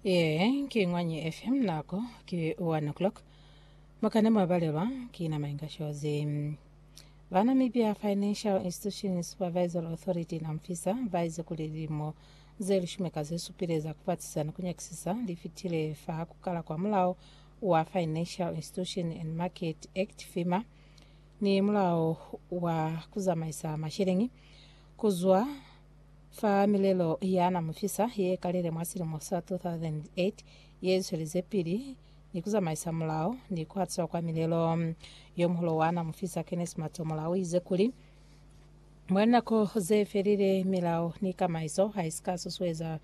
Yee, ki Ngwanyi FM nako ki 1 o'clock. Mukane mwa balelwa ki na mainga shozi. Ba Namibia Financial Institution Supervisory Authority namfisa baize kuli lilimo ze lishumi ka ze supile za kupatisisa ni kunyakisisa li fitile fa kukala kwa mulao wa Financial Institution and Market Act FIMA ni mulao wa kuzamaisa mashilingi kuzwa Fa milelo ya na mufisa ye kalile mwa silimo sa 2008 ye zwelize pili ni ku zamaisa mulao ni ku hatiswa kwa milelo, yo muhulu wa na mufisa Kenneth Matomola u ize kuli, Mwa linako ze felile, milao ni kamaiso ha i si ka susueza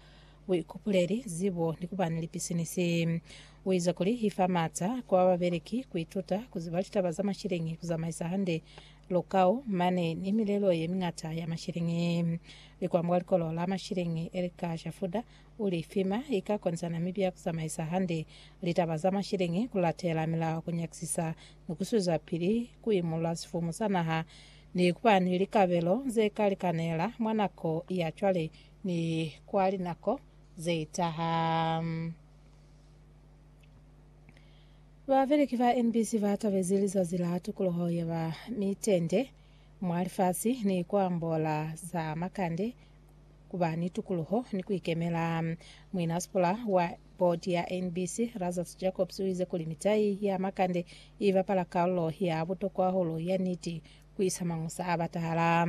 buikupuleli, zibo ni ku ba ni lipisinisi. U ize kuli, I fa m'ata kwa babeleki ku ituta ku ziba litaba za mashilingi, ku zamaisa hande Lukau, mane ni milelo ye miñata ya mashilingi. Likwa mwa likolo la mashilingi Erika Shafuda uli, FEMA ika konzana mibi ya kuzamaisa hande litaba za mashilingi, kulatela milao, kunyakisisa ni kuswezapili kuimulula sifumu sa naha, ni kuba ni likabelo zeka likanela mwa nako ya cwale ni kwa linako zetaha. Babeleki ba NBC ba tabezi lizazi la tukuluho ye ba ni tende mwa lifasi ni ku ambola za makande, ku ba ni tukuluho ni ku ikemela. Muinasipula wa bodi ya NBC, Lazarus Jacobs, u ize kuli mitai ya makande i bapala kalulo ya butokwa hahulu ya niti ku isa mañusa a batahala.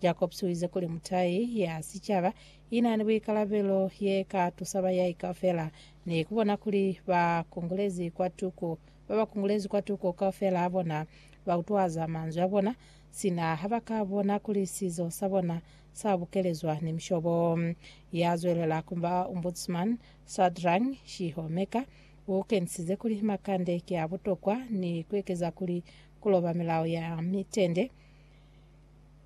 Jacobs u ize kuli mutai ya sicaba i na ni buikalabelo ye ka tusa bayai kaufela Ni kubona kuli ba kongolezi kwatuku, ba ba kongolezi kwatuku kaufela a bona, ba utwaza manzwi a bona, sina ha ba ka bona kuli sizo sa bona sa bukelezwa ni mishobo. Ya zwelela kuba Ombudsman, Sadrang Shihomeka, u kenisize kuli makande ki a butokwa ni kuekeza kuli kuloba milao ya mitende,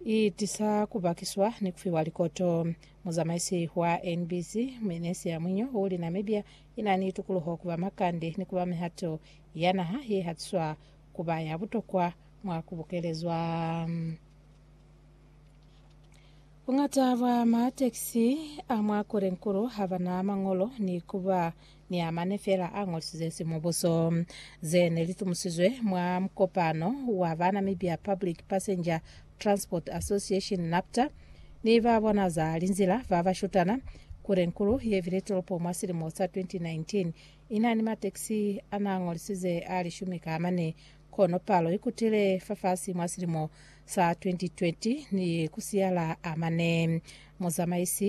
i tisa ku bakiswa ni ku fiwa likoto. Muzamaisi wa NBC, Minesia Mwinyo, u li Namibia i na ni tukuluho ku ba makande ni ku ba mihato ya naha ye hatiswa ku ba ya butokwa mwa ku bukelezwa. Buñata bwa matekisi a mwa Korenkuru ha ba na mañolo ni ku ba ni a mane fela a ñolisize simubuso. Ze ne li tumusizwe mwa mukopano wa banambi ba Public Passenger Transport Association, NAPTA, ni ba bona za linzila ba ba shutana, Kurenkulu ye bile tolopo mwa silimo sa 2019 i na ni matekisi a na ñolisize a lishumi ka mane, kono palo i kutile fafasi mwa silimo sa 2020 ni ku siyala a mane. Muzamaisi